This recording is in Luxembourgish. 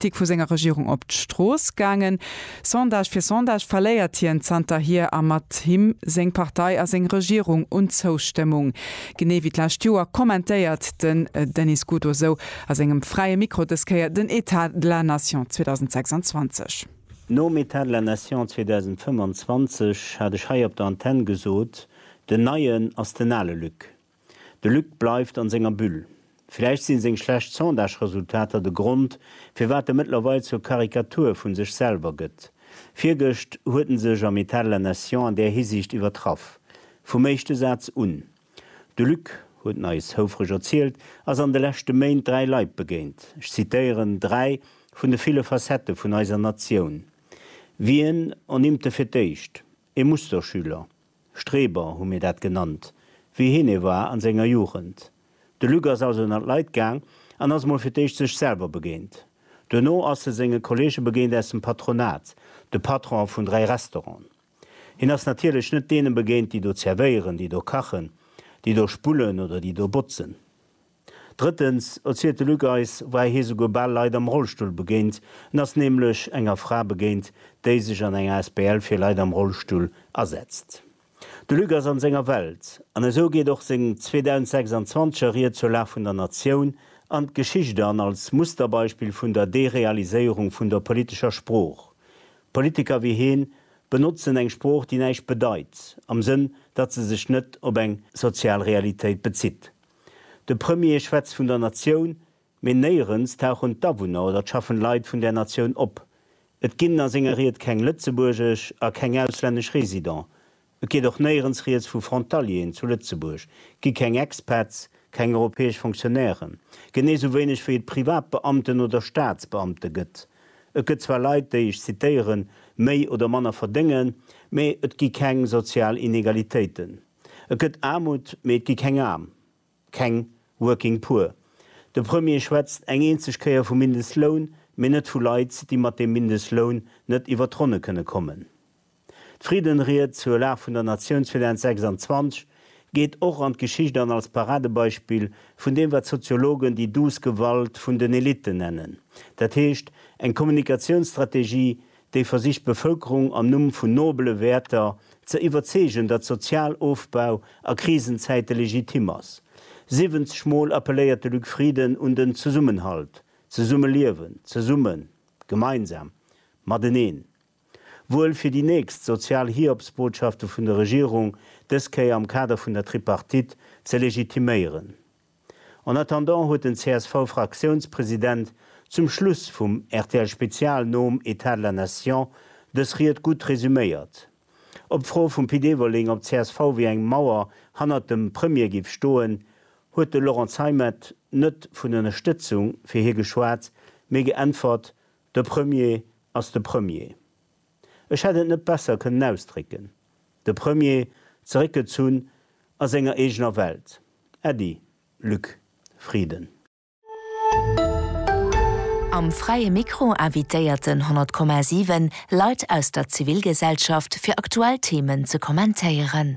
Kritik vu senger Regierung op d'Strooss gaangen. Sondage fir Sondage verléiert hien zanterhier a mat him seng Partei a seng Regierung un Zoustëmmung. Genee wéi d'lescht Joer kommentéiert den Denis Gut Oseau a sengem Fräie Mikro dës Kéier den État de la Nation 2026. Nom État de la Nation 2025 hat ech hei op der Antenne gesot, den Neien ass den ale Luc. De Luc bleift an senger Bulle. Villäicht sinn seng schlecht Sondage-Resultater de Grond, firwat e mëttlerweil zur Karikatur vun sech selwer gëtt. Virgëscht huet en sech am Etat de la Nation an där Hisiicht iwwertraff. Vum éischte Saz un. De Luc, huet en eis houfreg erzielt, ass an de leschte Méint dräi Leit begéint, ech zitéieren, dräi vun de ville Facettë vun eiser Natioun. Wien onnimmt e fir d'éischt? E Musterschüler, Streber hu mir dat genannt, wéi hien e war a senger Jugend. De Luc ass also ënnert Leit gaang an ass mol fir d'éischt sech selwer begéint. Duerno ass e senge Kolleege begéint aus dem Patronat, de Patron vun dräi Restauranten. Hien ass natierlech net deene begéint, déi do zerwéieren, déi do kachen, déi do spullen oder déi do botzen. Drëttens, erzielt de Luc eis, war hie souguer bal Leit am Rollstull begéint. En ass nämlech enger Fra begéint, déi sech an enger Asbl fir Leit am Rollstull asetzt. De Luc ass an senger Welt. An esou geet och seng 2026 er Ried zur Lag vun der Natioun an d'Geschicht an, als Musterbeispill vun der Derealiséierung vun der politescher Sprooch. Politiker wéi hien benotzen eng Sprooch, déi näischt bedeit, am Sënn, datt se sech net op eng sozial Realitéit bezitt. De Premier schwätzt vun der Natioun, mee néierens tauchen d'Awunner oder d'schaffend Leit vun där Natioun op. Et ginn a senger Ried keng Lëtzebuergesch a keng auslännesch Resident. Et geet och néierens rieds vu Frontalieren zu Lëtzebuerg, gi keng Expats, keng europäesch Fonctionnairen, genee sou wéineg wéi et Privatbeamten oder Staatsbeamte gëtt. Et gëtt zwar Leit, déi, ech zitéieren, méi oder manner verdéngen, mee et gi keng sozial Inegalitéiten. Et gëtt Aarmut, mee et gi keng Aarm, keng working poor. De Premier schwätzt eng eenzeg Kéier vu Mindestloun, mee net vu Leit, déi mat deem Mindestloun net iwwer d'Ronne kënne kommen. D'Friddenried zur Lag vun der Natiounsfinanz 26 geet och an d'Geschicht an als Paradebeispill vun deem, wat d'Soziologen déi douce Gewalt vun den Elitten nennen, dat heescht eng Kommunikatiounsstrategie, déi versicht d'Bevëlkerung am Numm vun nobele Wäerter ze iwwerzeegen, datt Sozialofbau a Krisenzäite legitim ass. Siwwenzeg Mol appelléiert de Luc Frieden un den Zesummenhalt, Zesummeliewen, zesummen, gemeinsam, mateneen. Wuel fir déi nächst sozial Hiobsbotschafte vun der Regierung, dës Kéier am Kader vun der Tripartite ze legitiméieren. En attendant huet den CSV-Fraktiounspresident zum Schluss vum RTL-Spezial nom État de la Nation dës Ried gutt resuméiert. Op d'Fro vum Pit Everling, ob csv wéi eng Mauer hannert dem Premier géif stoen, huet de Laurent Zeimet net vun Ënnerstëtzung fir hie geschwat, mee geäntwert, De Premier ass de Premier. Ech hätt et net besser kënnen ausdrécken. De Premier, zeréckgezunn a senger eegener Welt. Äddi, Luc Frieden. Am Fräie Mikro invitéierten 100,7 Leit aus der Zivilgesellschaft fir aktuell Themen ze kommentéieren.